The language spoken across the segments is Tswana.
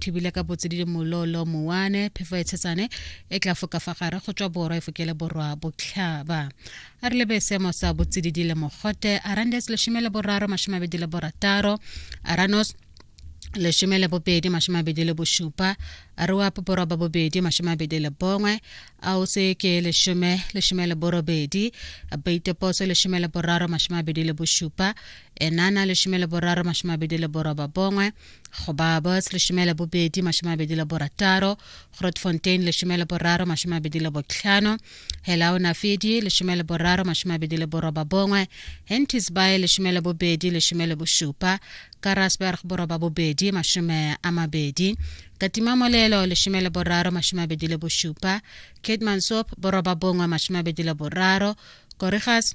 thibile ka botsididi mololo mowane phefo e tshetsane e tla foka fa gare go tswa borwa e fokele borwa botlhaba a re lebe seemo sa botsididi le mogote arandes leshome le boraro mashome a bedi le borataro aranos leshome le bobedi mashome a bedi le bošupa a re wa poporo ba bobedi mashome a bedi le bongwe a o se ke leshome leshome le borobedi baiteposo leshome le boraro mashome a bedi le bošupa enana leshome le boraro mashome a bedi le boroba bongwe go ba bos lesome le bobedi masome mabedi le borataro grotfontein lesome le boraro masome mabedi le botlhano helaonafedi lesome le boraro masome mabedi le boroba bongwe hentisby lesome le bobedi lesome le bosupa karasberg boroba bobedi masome a mabedi katimamolelo lesome le boraro masome mabedi le bosupa catemansoap boroba bongwe masome mabedi le boraro korigas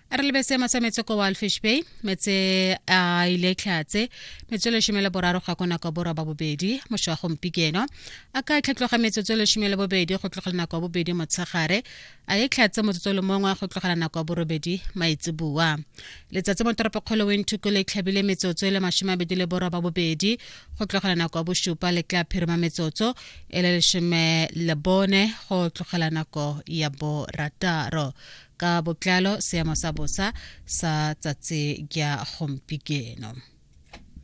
a re lebetse seema sa metse ko walfish bay metse a ile tlhatse metse e leshome le boraro ga ko nako borwa ba bobedi mošwa gompikeno a ka tlhatloga metsotso e leshome le bobedi go tlogela nako ya bobedi motshegare a ye tlhatse motsotso le mongwe go tlogela nako ya borobedi maitseboa letsatsi mo toropokgolo wenthuko le tlhabile metsotso e le masome abedi le borwa ba bobedi go tlogela nako ya bosupa le tla phirima metsotso e le leshome le bone go tlogela nako ya borataro Ka botlalo seemo sa bosa sa tsatsi kya gompikeno.